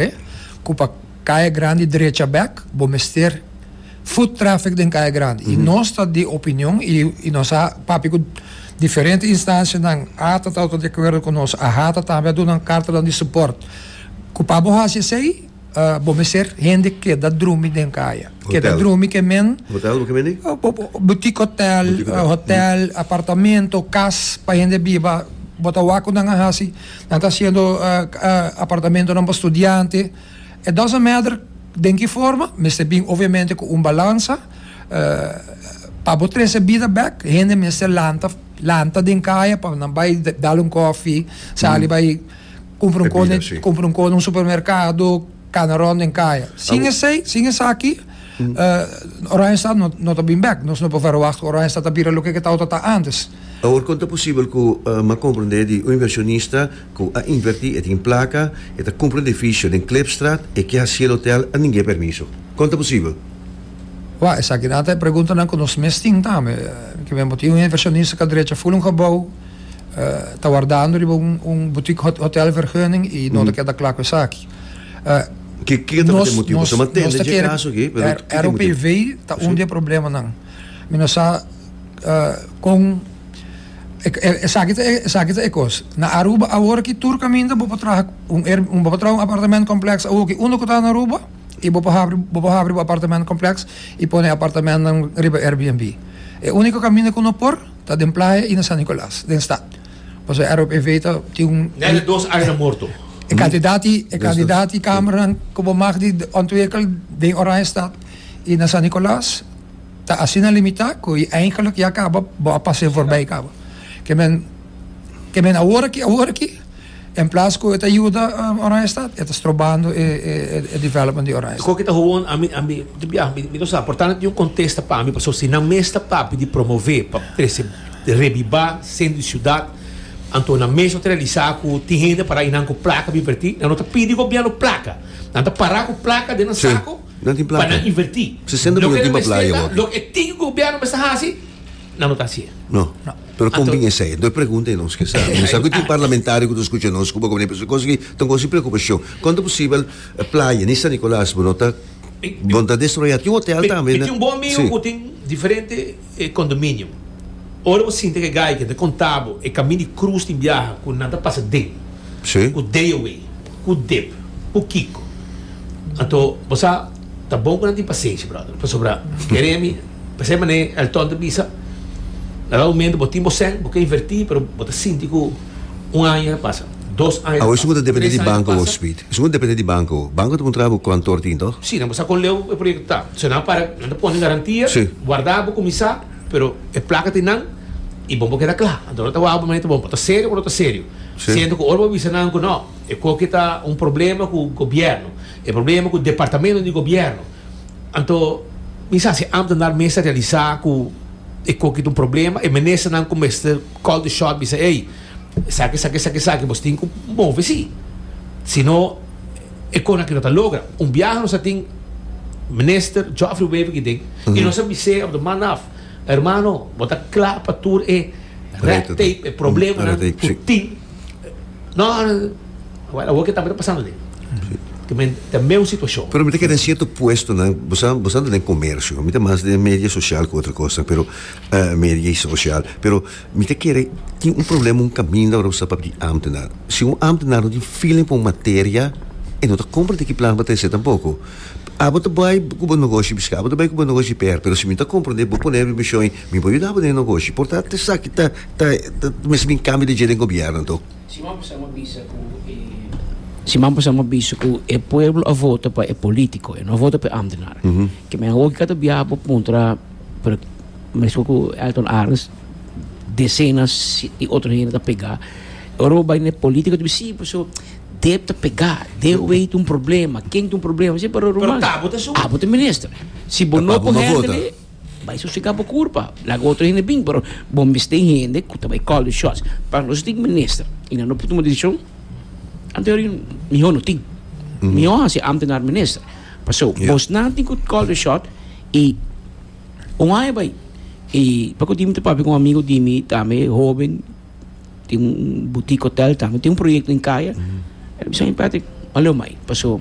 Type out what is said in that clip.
He cu pa Kaya Grandi drecha bek bo mester foot traffic den Kaya Grandi y nos ta di opinion y nos a papia cu diferente instancianan a ta tawata di acuerdo cu nos a hata tambe a duna nan cartanan di support cu pa bo haci esey bo mester hende keda drumi den Kaya keda drumi ke men boutique hotel apartamento cas pa hende biba bo ta wak cu nan a haci. Nan ta hasiendo apartamentonan pa studiante. E dozen meter den ki forma? Mester bin obviamente ku un balansa. Pa bo trese bida bek, hende mester lanta lanta den kaya pa nan bai dal un kofi, sali bai kumpra un kos den kumpra un kos den un supermerkado. Cana rond den kaya. Sin esey, sin esaki, Oranjestad no, no ta bin bek. Nos no por verwagt ku Oranjestad ta bira loke ke Tauta ta antes. Awor kon ta posibel ku m'a komprendé di un inversionista ku a invertí, e tin plaka, e ta kumpra un edifisio den Klipstraat, e ke hasié el hotèl, a ningú e permiso? Kon ta posibel? Wak, esakinan ta e preguntanan ku nos mes tin tambe. Ke men bo tin un inversionista kua drecha ful un gebou, ta wardando riba un butik hotèl vergunning i no ta keda kla ku esaki. Ke ke ta p'e motibu? Nos nos nos ta kere ROPV ta un di e problemanan mi no sa kon esaki ta esaki ta e kos na Aruba awor aki tur kaminda bo por traha un air bo por traha un apartament complex awoki unu ku ta na Aruba i bo por habri bo por habri bo apartament complex i pone e apartamentnan riba Airbnb e uniko kaminda ku no por ta den playa i na San Nicolas den stad. Paso e ROPV ta tin un. Nel e dos aña na morto. E kandidat i e kandidat i kamernan ku bo mag di ontwikkel den Oranjestad i na San Nicolaas ta asina limitá ku i eigentlik ya kaba bo a pas'é forbei kaba. Ke men ke men awor aki awor aki. En plas cu e ta yuda Oranjestad, e ta strobando e development di Oranjestad. Coki ta hoon, ami, ami, di biaha mi, mi no sa, por tanto tin un contesta pa ami, pasobra si nan mes ta papia di promove pa trece rebiba centro di ciudad, anto nan mes lo ta realisa cu tin hende para y nan cu placa pa inverti, nan no ta pidi gobierno placa, nan ta para cu placa den nan saco pa nan inverti. Loke nan mester ta, loke e tin cu gobierno mester haci, nan no ta haci'e. Pero kon bin esei? Dor pregunta e nos ke sa. Mi no sa ku tin parlamentario ku ta skucha nos ku bo komo nepe su kos aki ta un kos di preokupashon. Kon ta posibel playa ni San Nikolas bo no ta bo no ta destroyá? Tin un hotel tambe na. Mi tin un bon amigu ku tin diferente kondominio. Ora bo sinti ke gaiken ta konta bo e kaminda di krus tin biaha ku nan ta pasa den ku deo ei. Cu dip? Pukico? Anto bo sa ta bon cu nan tin pasenshi, brother, pasobra kere mi p'esey manera Elton ta bisa, na dado momento bo tin bo sèn, bo ke inverti, pero bo ta sinti cu un aña ta pasa, dos aña ta Awo, esun pasa, ta depende tres di aña ta banco, pasa. Speed. Esun ta depende di banco awo. Banco ta puntra bo cuantor tin, toch? Si, nan bo sa con leu e proyecto ta. So nan para, nan ta pone garantia, Sí. warda, bo cuminsa. Pero e plaka tin nan y bon por keda cla. Anto no ta wak bo manito bon por ta serio o no ta serio. Si. Siento cu ora bo bisa nan cu no, e coke ta un problema cu gobierno, e problema cu departamento di gobierno. Anto mi sa si Amter nan mester realisa cu e coke ta un problema, e minister nan cu mester call the shot bisa ey, esaki, esaki, esaki, esaki, bos tin cu move si. Si no. E kona ki no ta logra. Un biaha nos a tin Minister Geoffrey Wever Giding y nos a bis'é op de man af, Hermano, bo ta kla pa tur e red tape, e problemanan cu bo tin? No, awor awor ki'e tambe ta pasando den. Cu men ta meun situacion. Pero mi ta keda en cierto puestonan, bo sa, bo sa ta den comercio, mi ta mas den media social cu otro cosnan, pero, eh, media y social, pero. Mi ta kere tin un problema un kaminda ora bo sta pa bini ámtenar. Si un ámtenar no tin feeling pa un materia, e no ta komprendé ki plan bo ta hesé tampoko. Abo ta bai ku bo negoshi biskei abo ta bai ku bo negoshi per, pero si mi no ta komprendé bo pone mi mishon i mi por yuda bo den e negoshi. Por tanto esaki ta ta mester bin kambio di dje den gobièrnu anto. Siman pasá mi a bisa ku e siman pasá mi a bisa ku e pueblo a vota pa e polítiko, e no a vota pa e ámtenar. Ke mi a hopi ka ta bia bo puntra. Pero mesmo cu Elton Arns decenas di otro hende ta pega y ora bo bay na e politico ta bisti si paso Deb ta pega Deb wey ta un problema ken ta un problema si pero ruman Pero Tabo ta su Abo ta minister si bo no Tabo por no hende vota. ley bay sosega bo curpa laga otro hende bin pero bo misti e hende cu ta bay call the shots paso nos tin minister y nan no por tuma decision anteor y mihor no tin mihor haci e ambtenar minister paso Yeah. bosnan tin cu call the shot. I un aña bai i paku tin mi ta papia ku un amigu di mi tambe hoben tin un butik hotel tambe tin un proyekto den kaya el a bisa mi Patrick a lo mai paso.